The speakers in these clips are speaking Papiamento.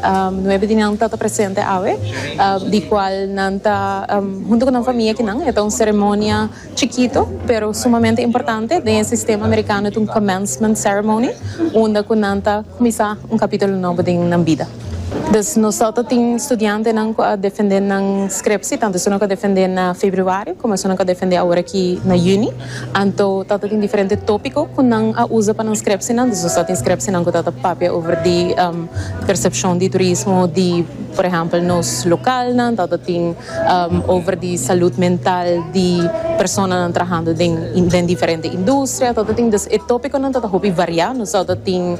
Nuebe di nan tata presente awe, di cual nan ta hunto cu nan famia kinan. E ta un ceremonia chikito pero sumamente importante. Den e sistema Americano ta un commencement ceremony unda cu nan ta cuminsa un capitulo nobo den nan bida. Dus nos al ta tin studiantenan cu a defende nan scriptie, tanto esunnan cu a defende na Februario como esunnan cu a defende awor aki na Juni. Anto tata tin diferente tópiko ku nan a usa pa nan skrèpsenan. Desos ta tin skrèpsenan ku ta ta papia over di persepshon di turismo di, por ehèmpel, nos lokalnan. Ta ta tin over di salud mental di personanan trahando den diferente industria. Ta ta tin, dus e tópikonan ta ta hopi variá. Nos ta ta tin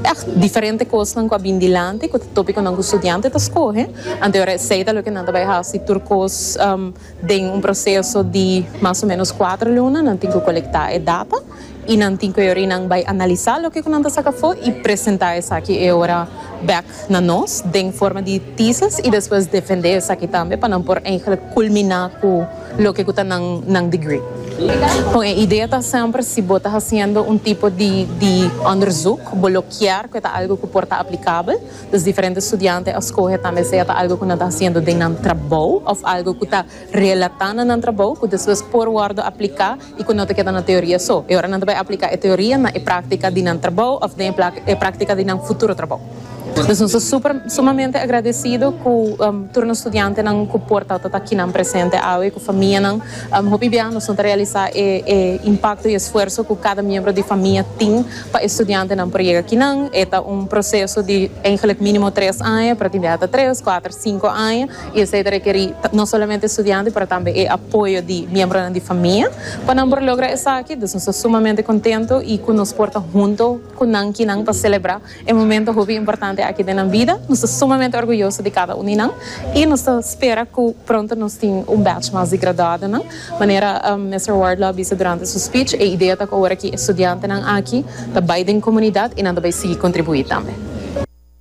ègt diferente kosnan ku a bin dilanti, ku ta tópikonan ku studiante ta skohe. Anto esei ta loke nan ta bai hasi tur kos. Den un proseso di mas o menos kuater luna nan tin ku kolektá e data i nan tin ku e ora ei nan bai analisá loke ku nan ta saka afó i presentá esaki e ora bèk na nos den forma di tesis i despues defendé esaki tambe pa nan por eigenlik kulminá ku loke ku ta nan nan degree. Kon e idea ta semper si bo ta hasiendo un tipo di di ònderzuk bo lo kier ku e ta algu ku por ta aplikabel, Los diferente studiante a scoge tambe sea ta algo cu nan ta haciendo den nan trabou of algo cu ta relata na nan trabou cu despues por wordo aplica y cu no ta keda na teoria so. E ora nan ta bay aplica e teoria na e practica di nan trabou of den e practica di nan futuro trabou. Nos nos ta super sumamente agradecido cu tur nos studiantenan cu por ta ta aki nan presente awe cu famianan. Hopi bia nos no ta realisa e impacto y esfuerso cu cada miembro di famia tin. Pa e studiantenan por yega kinan e ta un proseso di eigenlik minimo tres aña pero tin di hasta tres, kuater, sinku aña y esei ta rekerí no solamente studiante pero tambe e apoyo di miembronan di famia pa nan por logra esaki. Dus nos ta sumamente contento y cu nos por ta hunto cu nan kinan pa celebra e momento hopi importante aki den nan bida. Nos ta sumamente orguyoso di cada un di nan y nos ta spera cu pronto nos tin un batch mas di graduadonan. Manera Mister Ward lo a bisa durante su speech, e idea ta ku awor aki e studiantenan aki ta bai den komunidat i nan ta bai sigui kontribuí tambe.